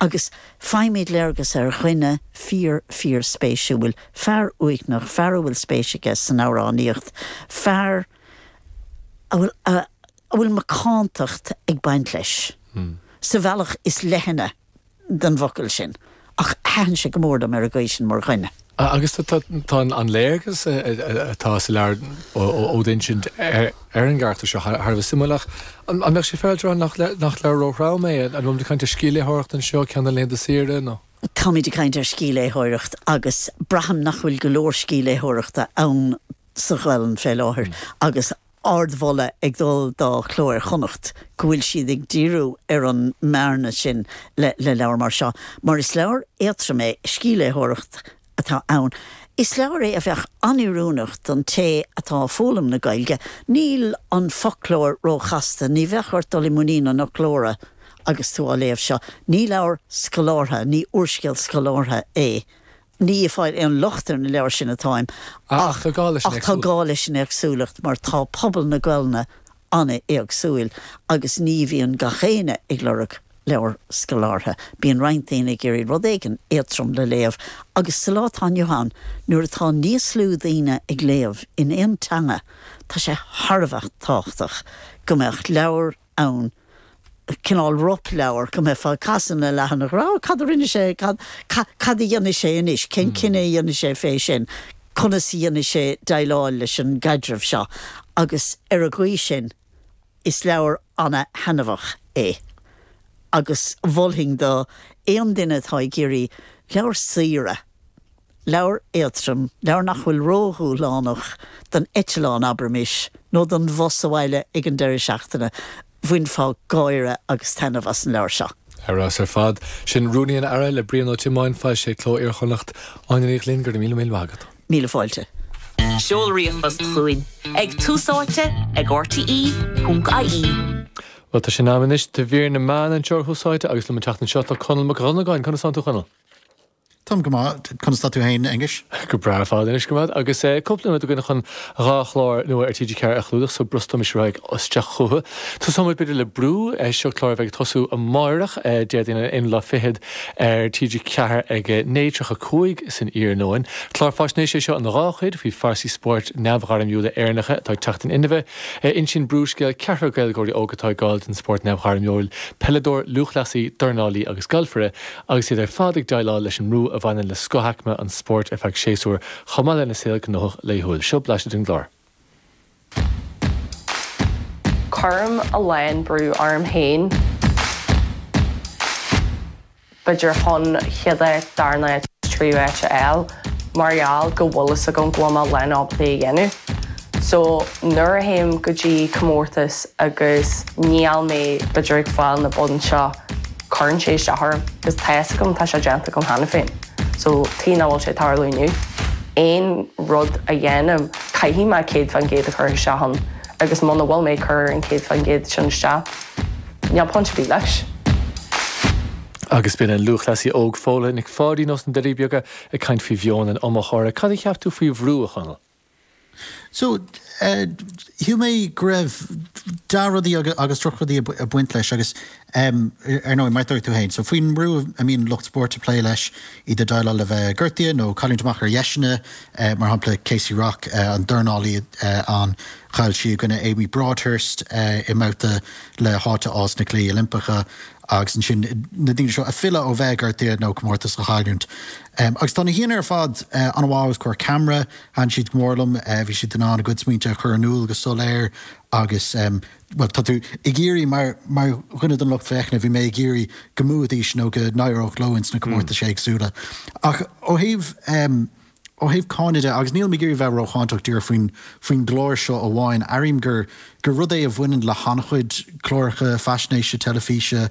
agus faighimid léargas ar dhuine fíor-fíorspéisiúil, fear uaigneach, fear a bhfuil spéis aige san amhránaíocht, fear a bhfuil a bhfuil macántacht ag baint leis, sa bhealach is leithne den bhfocal sin, ach thaitin sé go mór liom ar an gcaoi sin mar dhuine. Agus tá an léargas atá sa leabhar ó t'insint ar an gcarachtar seo thar a bheith suimiúil ach an mbeadh sé féaráilte a rá nach leabhar róthrom é? An bhfuil muid ag caint ar scíthléitheoireacht anseo, ceann le haghaidh do saoire nó.? Táimid ag caint ar scíthléitheoireacht agus braithim nach bhfuil go leor scíthléitheoireachta ann sa Ghaolainn fé láthair agus ardmholadh ag dul do Chló Iar-Chonnacht go bhfuil siad ag díriú ar an mbearna sin le leabhar mar seo, mar is leabhar éadtrom é, scíthléitheoireacht atá ann. Is leabhar é a bheadh an-oiriúnach don té atá ag foghlaim na Gaeilge. Níl an foclóir ró-chasta, ní bheadh ort dul i muinín an fhoclóra agus tú á léamh seo. Ní leabhar scolártha, ní úrscéal scolártha é Ní ag fáil aon locht ar na leabhair sin atáim ach tá gá leis an éagsúlacht mar tá pobal na Gaelainne an-éagsúil agus ní bhíonn gach éinne ag lorg leabhar scolártha. Bíonn roinnt daoine ag iarraidh rud éigin éadtrom le léamh agus sa lá atá inniu ann nuair atá níos lú daoine ag léamh in aon teanga tá sé thar a bheith tábhachtach go mbeadh leabhar ann, cineál ropleabhar, go mbeifeá ag casadh na leathanach ag rá, cad a rinne sé, cad, cad, cad a dhéanfaidh sé anois, cén cinneadh a dhéanfaidh sé fé sin, conas a dhéanfaidh sé déileáil leis an gcaidreamh seo agus ar an gcaoi sin is leabhar ana-thaitneamhach é agus mholfainn d'aon duine atá ag iarraidh leabhar saoire, Leabhar éadtrom, leabhar nach bhfuil ródhúshlánach don eitleán, abraimis, nó don bhus abhaile ag an deireadh seachtaine, bhainfeá gáire agus taitneamh as an leabhar seo. Ar fheabhas ar fad. Sin Rúnaí an Aire le Brian Ó Tiomáin, foilsithe ag Cló Iar-Chonnacht. Áine Ní Ghlinn, go raibh míle míle maith agat. Míle fáilte. Seol ríomhphost chugainn ag Tús Áite ag rte.ie. Bhuel, tá sé in am anois do mhír na meán anseo ar Thús Áite agus liom an tseachtain seo tá Conall Mac Dhonnagáin. Conas atá tú, a Chonaill? Táim go maith, conas tá tú féin a Aonghuis? Go breá ar fad, anois go maith agus cúpla nóiméad againn chun dhá chlár nua ar TG4 a chlúdach, so brostaímis ar aghaidh isteach chucu. Tosóimid b'fhéidir le Brú, seo clár a bheidh ag tosú amárach, Déardaoin an t-aonú lá fichead ar TG4 ag 9:35 san iarnóin. Clár faisnéise é seo ina dhá chuid faoi phearsaí spóirt neamhghairmiúla Éireannacha atá ag teacht in inmhe. Insíonn Brú scéal ceathrar Gaeilgeoirí óg atá ag gabháil den spórt neamhghairmiúil, peileadóir, lúthchleasaí, dornálaí agus galfaire, agus iad ar fad ag déileáil leis an mbrú a bhaineann le scothaicme an spóirt ar feadh séasúir chomh maith lena saol gnóthach laethúil. Seo blaiseadh den gclár. Cuirim a lán brú orm féin. B'fhéidir chun chéad áit, dara háit, tríú háit a fháil. mar gheall go bhfuil fhios agam go bhfuil mé in ann é a dhéanamh so nuair a théim go dtí comórtas agus níl mé b'fhéidir ag fáil na boinn seo cuireann sé isteach orm cos tá fhios agam tá sé déanta agam cheana féin so tuige nach bhfuil sé ag tarlú inniu aon rud a dhéanaim caithfidh mé 100% a chur isteach ann agus muna bhfuil mé ag cur an 100% sin isteach níl point ar bith leis. Agus b'in an lúthchleasaí óg Fódhla Nic Pháidín ó na Doirí Beaga ag caint faoi mheon an iomaitheora. Cad a cheap tú faoi bhrú, a Chonaill? So, shíl mé go raibh dea-rudaí agus drochrudaí ag baint leis agus, ar ndóigh, mar a dúirt tú féin, so faoin mbrú a mbíonn lucht spóirt ag plé leis, iad ag déileáil le bheith gortaithe nó cailliúint amach ar dheiseanna, mar shampla Kaci Rock, an dornálaí a chaill sí i gcoinne Amy Broadhurst i mbabhta le háit a fháil sna Cluichí Oilimpeacha, agus ansin na daoine seo ag filleadh ó bheith gortaithe nó comórtas a chailliúint. Agus tá na haíonna ar fad an-mhaith os comhair camera, thaitin siad go mór liom, bhí siad in ann a gcuid smaointe a chur in iúl go soiléir agus, bhuel, tá tú ag iarraidh, mar dhuine den lucht féachana, bhí mé ag iarraidh go mbuafaidís nó go n-éireodh leo ins na comórtais éagsúla. Ach ó thaobh. Ó thaobh cáineadh de, agus nílim ag iarraidh bheith rócháinteach díreach faoin gclár seo amháin, airím gur rud é a bhaineann le han-chuid cláracha faisnéise teilifíse,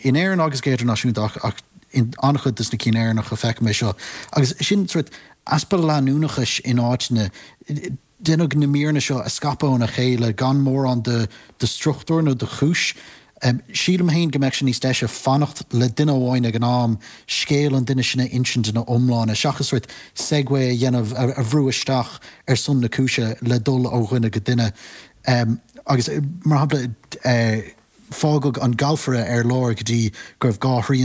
in Éirinn agus go hidirnáisiúnta, ach in an-chuid dos na cinn Éireannacha feicim é seo, agus sin sórt easpa leanúnachais in áiteanna. Deineadh na míreanna seo a scaipeadh óna chéile gan mórán de struchtúr nó de chúis. Sílim féin go mbeadh sé níos deise fanacht le duine amháin ag an am, scéal an duine sin a insint ina iomláine, seachas sórt segue a dhéanamh, a bhrú isteach ar son na cúise le dul ó dhuine go duine. Agus, mar shampla, fágadh an galfaire ar lár go dtí go raibh dhá thrian